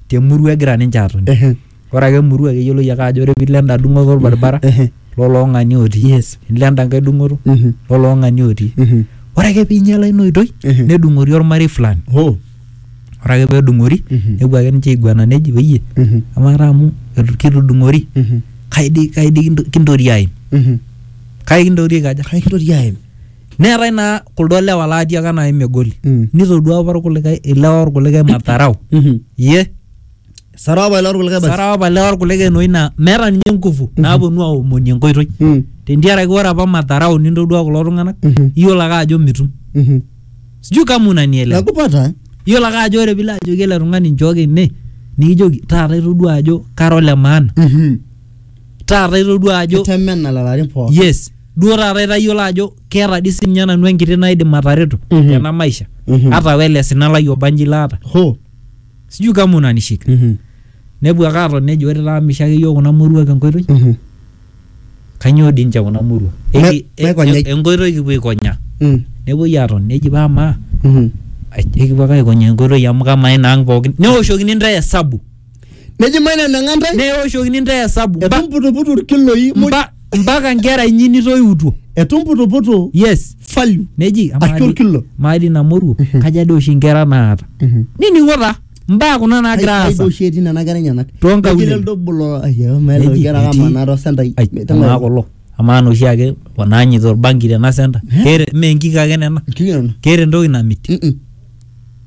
te murua egira ninche aatoni Ehe. ore ake emurua keyioloi ake ajo ore piilo enda dung'oto olbaribara Ehe. loloong'ani otii Yes. nilo enda nkae dung'oto Mhm. loloong'ani otii Mhm. ore ake piinyiala ina oitoi Ehe. nedung'ori olmarei fulani Oh. ore ake pedung'ori Mhm. nepuo ake ninche aiguana neji peyie Mhm. amaa taa amu etu- kitudung'ori Mhm. kai dii kai dii kinto- kintori aim Mhm. kai kintori aikaja Kai kintoki aim? neetae naa kuldo lewa laatiaka nai megoli Mm. nitodua apa irkulikae ilewa orkulikae madharau Mhm. ye Sara apa ilo orkulikae basi. sara apa lewa orkulikae enoi naa meeta ninye nguvu naaponu aomoni enkoitoi Mm. tentiaraki ore apa madharau nintodua kulo tung'anak Mhm. iyiolo ake ajo mitum Mhm. sijui kama unanielewa Nakupata. eh? iyiolo ake ajo ore pilo ajoki ele tung'ani nchooki ene nikijoki taata itodua ajo kara ole maana Mhm. taata itodua ajo kitemena lalarin pookin yes duo taata itayiolo ajo keeta dii sininye nanu enkiti naidim atareto Mhm. tena maisha Mhm. hata wele sina lai obanji laata ho sijui kama unanishika Mhm. nepuo ake aton nejo ore taa misho ake yiok kuna moruak enkoitoi Mhm. kanyoo dii ninche kuna moruak Me- Eki- e- maikonyai. e- enkoitoi kipuo aikonya Mm. nepuoi aton neji paa maa Mhm. ekipuo ake aikonya enkoitoi amu kamaa inaang pookin neoshokini intae esabu neji maina nang'a ntae neoshokini ntae esabu mba- etumputuputu irkiloi muj mba- mpaka nkera inyi nitoiutuo etumputuputu yes value neji Ashu amaadi- orkilo. maadi namoruo kaja doi oshi nkera naata nining'o taa mbaa kuna naagira aasa aidoshi etii nena kera enyenak Toonkaulele. Netii leldo bolo ayo maelo Neji, nkera etii- kamanaa tosentai Ai, amaa kulo amaa noshi ake wanaanyita orbanki tena senta keeta mee nkik ake nena keeta entoki namit Mm-mm.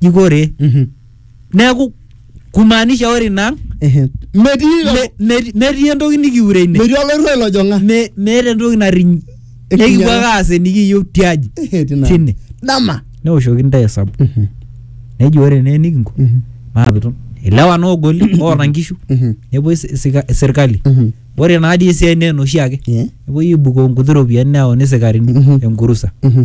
jikore Mhm. neeku kumaanisha ore ina ang Ehe. Metii me- me- metii entoki nikiure ine metii olorua ilojong'a. Me- meeta entoki nariny Ekinyala. nekipuo ake aas enikiyieu tiaji Ehe, tina. tine Dama. neoshoki ntae esabu Mhm. neji ore naa enikinko Mhm. maapitu ilewa noogoli oota nkishu Mhm. nepuoi si- sika- sirkali Mhm. ore naa dii esiai naa enoshi ake Yeah. nepuoi aibukoo nkuti ropiyiani neyauni sikarini Mhm. enkurusa Mhm.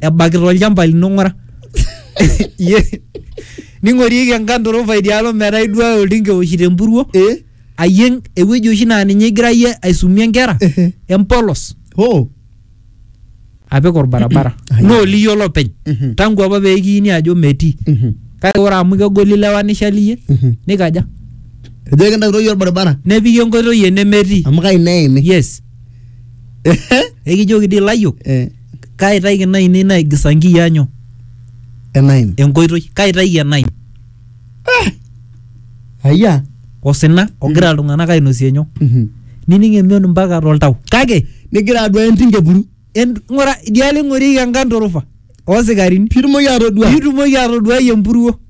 ebakita olchamba lino ng'ura Ye- ning'orieki enkandorofa idialo metaa iduaya oltinka ewoshito empuruo Eh? ayieng ewueji oshi naa ninye igira yie aisumie nkera Ehe. empolos Oh. apik orbarabara Ai. naa oli yiolo openy Mhm. tangu apa pee kiini ajo metii Mhm. kake ore amu kegoli lewa nishali iyie Mhm. nikaja Ejo kintakiroyie orbaribara nepiki enkoitoi enemetii amu kai neimi. yes ekijoki dii ilayiok Eh. Kaaitaiki inaainei naigisa nkiyiaanyo enaim enkoitoi, kaaitaiki enaim ayia osina ogira iltung'anak ainosie nyoo, Mhm. nining emion mpaka toltau. Kake nigira aduaya entim kepuru en- ng'ura idialo eing'orieki enkanturufa oosikarini piitumoki atodua piitumoki atoduai empuruo.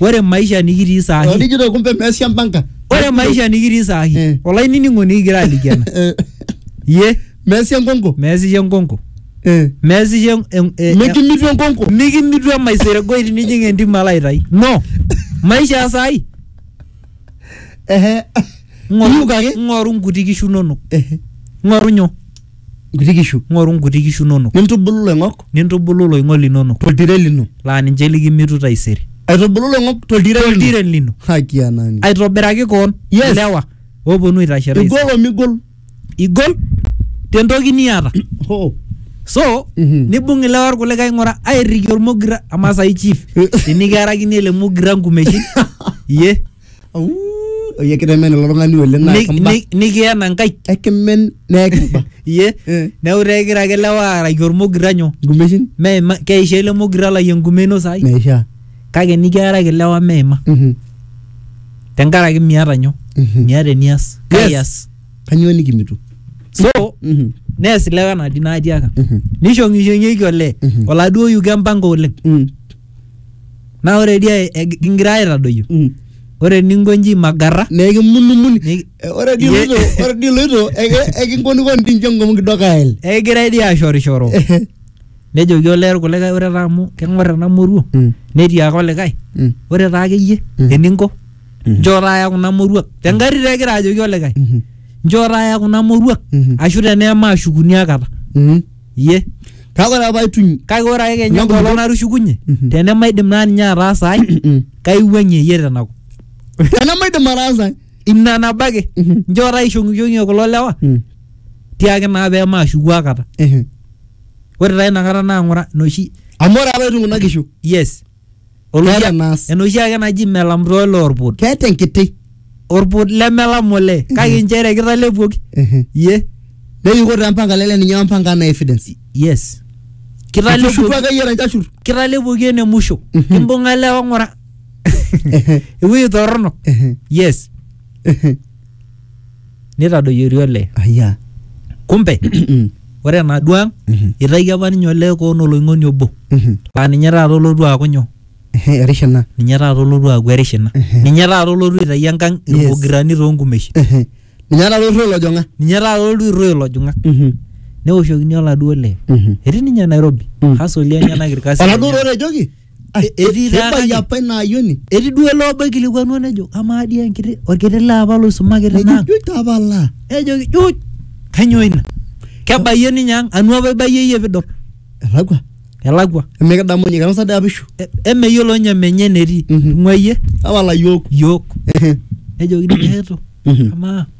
ore maisha nikitii saa hii Orijito kumbe meesia mpanka. ore maisha nikitii saa hii Eh. olainining'oni kigira aliki ena Eh, ye Meesia enkonko. meesisho enkonko Eh. meesisho en- en- eh, Mikimitu enkonko. mikimitu emaiseregoi tinijing entim alo aitai no maisha ya saa hii Ehe. Iyiuk ake. ng'oru ng'oru nkuti kishu inonok Ehe. ng'oru nyoo nkuti kishu ng'oru nkuti kishu inonok, nintubulu iloing'ok nintubulu iloing'ok linonok, toltire lino laa ninche likimitu taisere. aitubulu iloing'ok toltire lino Toltire lino. haki ya nani Aitobiraki koon Yes. ilewa ooponu aitashe taisere. igol omigol Igol tentoki niata. ho So, Mhm. nibung ilewa irkulikae ing'ura airriki ormogira amaa sai chief tinikiarakini ele mogira nkumeshin iye Au, oye kitemen ilo tung'ani oleng naa Ni- kimba. ni- nikiena nkaik Ekimen naa kimba. iye Eh. neeku taa egira ake lewa aaraki ormogira nyoo Nkumeshin meima keisha ele mogira lai enkume ino saai meishaa. kake nikiaraki lewa meima Mhm. tenkaraki miata nyoo Mhm. miata enias Yes. kaias Kanyoo nikimitu? so Mhm. nees ilewa enadi naatiaka Mhm. nishong'ishong'ieki olee Mhm. oladuo yuko empango oleng Mm. naa ore dia eg- kingira aitadoyio Mm. ore eninko inji magarra na ekimunumuni Niki- Eh, ore dii Ye- iloito ore dii iloito eke- ekinkonikoni dii nche ngom kidogo ael ekigirai dii ashorishoro nejoki olee irkulikae ore taa amu keng'or ena moruo Mm. netii ake olikae Mm. ore taa akeyie Mm. eninko Mhm. nchoo taaya kuna moruak tengarri taa egira ajoki olikae Mhm. nchoo taaya kuna moruak Mhm. ashu tenee maashukuni akata Mhm. Iyie. Kake ore apa aituny. Kake ore ake kenya enkolong natushukunye, mhm. tenemaidim naa ninye ataasa ai, mhm. kaiwuang'ie iyie tenakop. Tenemaidim ataasa ai. Ina nabo ake. Mhm. Nchoo taishong'ishong'ie kulo lewa, tiaki naa pee maashuku akata. Ore taa inakata naa ng'ura inoshi. Amu ore apa aituny kuna kishu. Yes. Oloshi- Keeta enaas. enoshi ake naji melam too ilo orput keeta enkiti orput lemelam ole kake nchere kitalepuoki Ehe. ye neyuko taa mpanga lele ninye wampanga na evidence yes Kitushuku kitalepuoki ake yie ranchashur kitalepuoki ene musho Mhm. kimbung'a lewa ng'ura Ehe. ewueji torrono Ehe. yes Ehe. neitadoyiori olee. Aya. Kumbe, ore enaduo ang, eitayio apa ninye olee koon oloing'oni obo, Mhm. laa ninye taata olotu aaku nyoo? Ehe, erish ina. Ninye taata olotu aaku erish ina. Ehe. Ninye taata olotu aitayu enkang Yes. ilmogirani too nkumeshin. Ehe. Ninye taata oirruo ilojong'ak. Ninye taata olotu airruo ilojong'ak. Mhm. Neoshokini oladuo lee. Mhm. Etii ninye Nairobi. Mm. Hasoli enyenak ilkasin Oladuo lenyenak. otejoki? Ai, etii taa Kebaiki kake- apa ina ayioni. etii duo ele obo oikilikuanua nejo amaa dii enkiti orkiti lee apa loisumaki Nejo tinaang juu tapala. nejoki juuj kanyoo ina kebayie ninye ang anu apa ibayie iyie pidol Elakwa. elakwa Emikidamu ninye kinosa dii apishu. E- emeyiolo ninye menye enetii Mhm. tung'uayie Tapala yook. yiok Ehe. nejoki ninye eto Mhm. amaa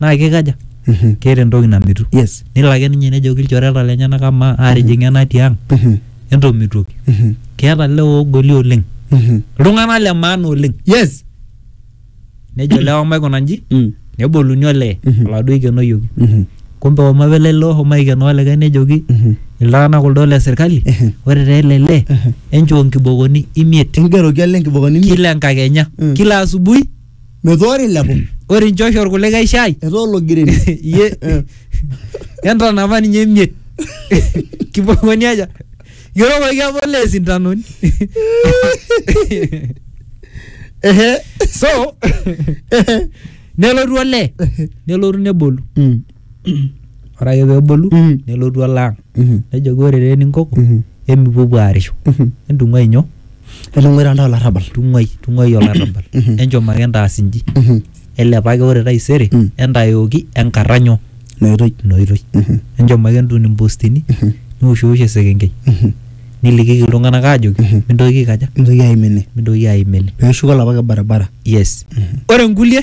naa kikaja Mhm. keeta entoki namitu yes nelo ake ninye nejoki ilchoreta lenyenak amaa aatijing'a ena tiang Mhm. entomitoki Mhm. keeta lewa oogoli oleng Mhm. iltung'anak le maana oleng yes nejo lewa maikuna nji Mm. neboluni olee Mhm. oladuo oikenoyioki Mhm. kumbe omo apa ele lee oshomo aikenoo olikae nejoki Mhm. iltung'anak kuldo le sirkali Ehe. ore taa ele lee Ehe. enchoo nkibokoni imiet ingeroki ale nkibokoni imiet. kila enkakenya Mm. kila asubuhi metua ore ilepo ore inchosho orkulikae shai etaa ologireni iye entanapa ninye emiet kipoponi aja yiolokoki apa ole sintanoni ehe so nelotu olee nelotu nebolu Mm. ore ake peebolu Mhm. nelotu alo ang Mhm. nejoki ore taa eninkoko Mhm. emipuopuo aarisho Mhm. entung'uai nyoo etung'uai taa ntae olarrabal tung'uai tung'uai olarrabal Mhm. enchom ake entaas inji Mhm. elepaki ore taisere Mm. entayooki enkarra nyoo noitoi ina oitoi Mhm. enchom ake entun impostini Mhm. niwoshiosh esekenkei Mhm. nilikiki iltung'anak aajoki Mhm. mintoki aikaja mintoki aimene mintoki aimene peeshuko olapa ke barabara yes Mhm. ore nkulie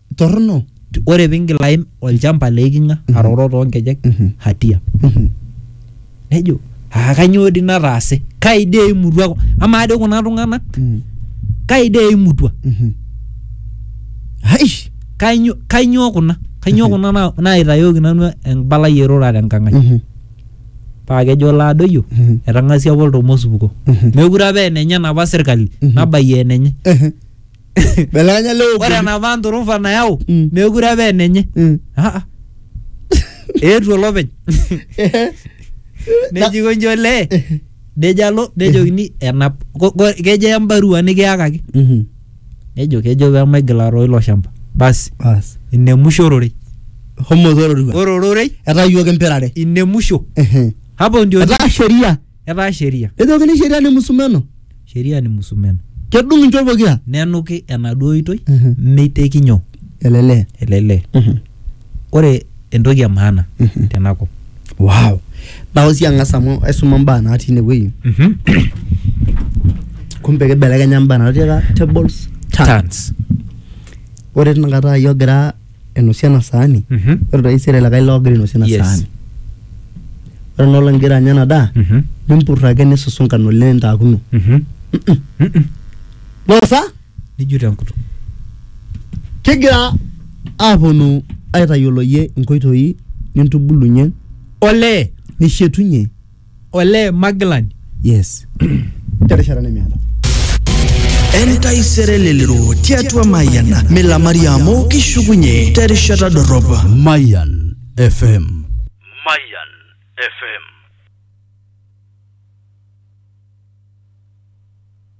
torrono T- ore pingil aim olchamba le iking'a Mhm. aroro toonkejek Mhm. hatia Mhm. nejo aa kanyoo dii nataase kai dii eimutua ku- amaa dii kuna tung'anak Mhm. kai dii eimutua Mhm. Aish. kanyoo kanyoo kuna kanyoo Mhm. kuna na- naitayooki nanu embalai erura tenkang' ai Mhm. paa kejo laadoyio Mhm. etang'asia apa oltomosupuko Mhm. mekure apa enenye enapa sirkali Mhm. nabayie enenye Ehe. belekanya leo ore enapa nturufa nayau Mm. meekure apa enenye Mm. Ah, ah. eetuo olopeny nejiko nji olee nejo alo nejokini enap ko- ko- kejo embarua nikiyakaki Mhm. nejo kejo pemaigil aroo ilo shamba basi Bas. ine musho ororei homo tororua ore ororei etayuoki empirare ine musho Ehe. hapo ndio etaa sheria etaa sheria Ejokini sheria ni musumeno. sheria ni musumeno Kedung inchot pokira. nenuki enaduo oitoi Mhm. meiteki nyoo Elele. elele ore entoki e maana Mhm. tenakop Wow. Nao sii ang'as amu aisuma mbaa natii inewueji. Kumbe kibelekenya mbaa natii taata tables. Turns. Turns. Ore tinakata iyie ogira ainosie ena saani Mhm. ore taisere likae loogira ainosie ena Yes. saani ore enaa olong igira anya ena daa Mhm. nimpurr ake nisusunka ng'ole nitaakuno Mhm. Mm-mm. nosa nijut enkutuk kigira aaponu aitayioloyie inkoitoi nintubulunye olee nishetunye ole magilani yes terishata nemeata entaisere lelero tiatua mayiana milamari amu kishukunye terishata dorrop Mayan FM. Mayan FM.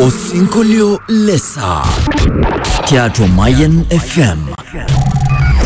Osinkolio le saa tiatua Mayian FM.